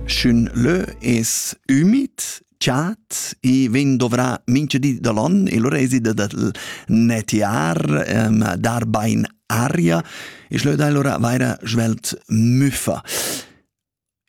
Sch'ün lö es ümid, chat, i vegn dovrà mincha di da l'on e lura esi da'l netiar, dar bain aria e schlö dai lura vaira svelt müffa.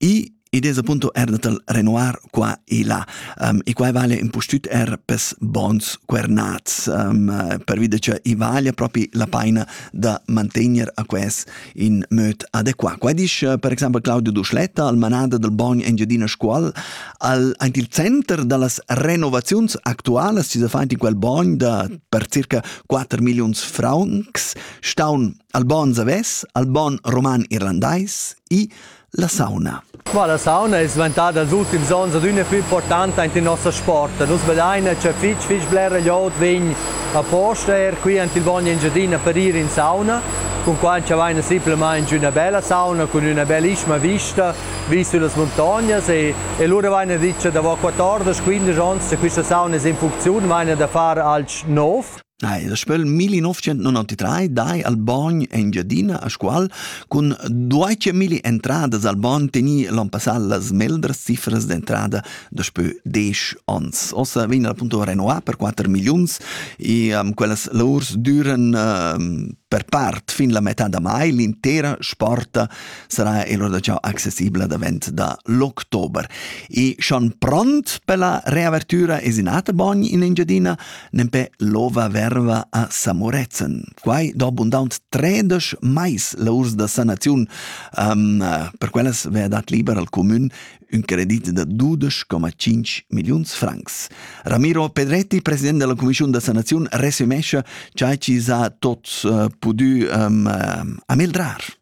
I id es appunto er datal renoir qua e là. e quai vale impustüt er pes bons cuernats, pervi da cha i vaglia propi la paina da mantegner a quels in möd adequat. Qua disch eh, per exempel Claudio Duschletta al manada del Bogn Engiadina Scuol al aint il center da las renovaziuns actualas, si se faint in quel bogn da per circa 4 millions francs, staun al bon zaves, al bon roman irlandais, i La sauna. Bah, la sauna es dvantada els ultims ons adüna plü importanta ant il nossa sport. Nus vedaina cha fich fich blera glioud vegn aposta eir qui ant il Bogn Engiadina per ir in sauna, cun quai cha vaina simplamaing üna bella sauna cun üna bellissima vista vis sü las muntognas e, e lura vaina dit cha davo 14-15 ons cha quista sauna es in funcziun vaina da far alch nouv. Nei, das Spiel 1993 dai al Bogn Engiadina a Scuol cun duace milli entradas al Bogn teni l'on passal las meldras cifras d'entrada daspö desch ons. Ossa vegn la punto renoa per 4 milliuns e um, quellas laurs düren um, per part fin la metà da mai. L'intera sporta sarà l'ora da ciao accessibile davent da l'october. E schon pront per la reavertura es in ater Bogn in Engiadina nempe lova verva a Samorezen. Quai do abundant tredesch mais la urs da sanaziun. Um, per quellas vea dat liber al comün un credit da 12,5 milliuns francs. Ramiro Pedretti, president della Commissione da Sanazione, resumesce ciò ci sa tot uh, pudü um, uh, amildrar.